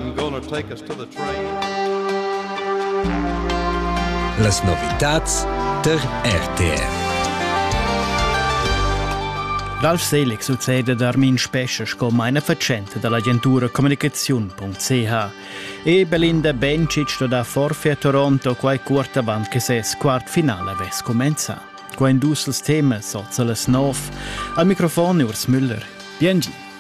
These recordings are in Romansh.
I'm gonna take us to the train. Las novitats der RTR. L'Alf Selec succede ad Armin Spescha sco meina fatschenta dall'agentura communicaziun.ch e Belinda Bencic sto da forfi a Toronto quai cuort avant che ses quart finale avess comenzà. Qua in dus temas, oza las nov. Al microfon Urs Müller. Biengi.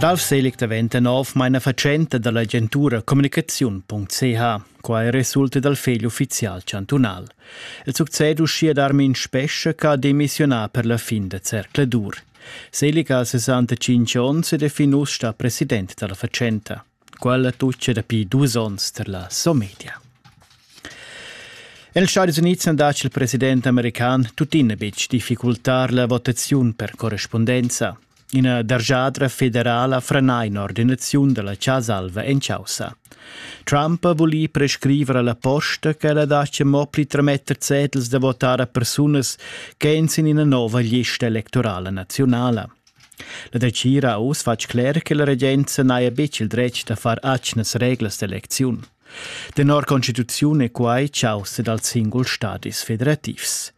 Ralf Selig daventa nov mainafatschenta dall'agentura communicaziun.ch. Quai resulta dal fegl ufficial chantunal. Il success uschia d'Armin Spescha ha demissionà per la fin da zercladur. Selig ha 65 onns ed è fin uss sta president dalla fatschenta. Quella tuccia dapi dus onns tar la Somedia. Els Stadis Unids han dat il president american tuttina betg difficultar la votaziun per correspondenza. Ina dargiadra federala frenà in'ordinaziun da la Casa Alva en causa. Trump ha vulì prescriver alla posta ch'ella dacia mo pli trametter zetels da votar a persunas ch'èn sin ina nova lista electorala naziunala. La dretgira ha uss fatg cler che la regenza n'haja betg il dretg da far atgnas reglas d'elecziun. Tenor constituziun è quai chaussa dals singuls stadis federativs.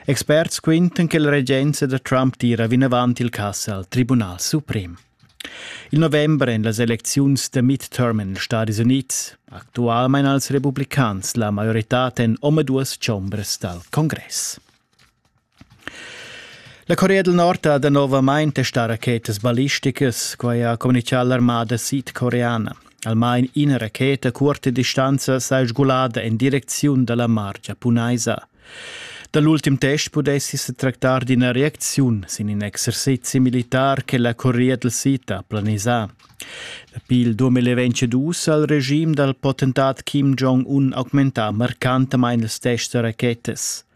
Experts quintan che la regenza da Trump tira vinavant il cass al Tribunal suprem. Il november èn las elecziuns da midterm en ils Stadis Unids. Actualmain als republicans la maioritad en omaduas chombras dal congress. La Corea del Nord ha danovamain testà rachetas ballisticas, quai ha communitgà l'armada sidcoreana. Almain ina racheta a curta distanza s'ha sgulada en direcziun da la mar giapunaisa. Da l'ultim test pudessi se tractar d'ina reacziun sin in exercizi militar che la Corea del Sid ha planisà. Dapi il 2022 ha il regime dal potentat Kim Jong-un augmentà marcantamain ils tests da rachetas.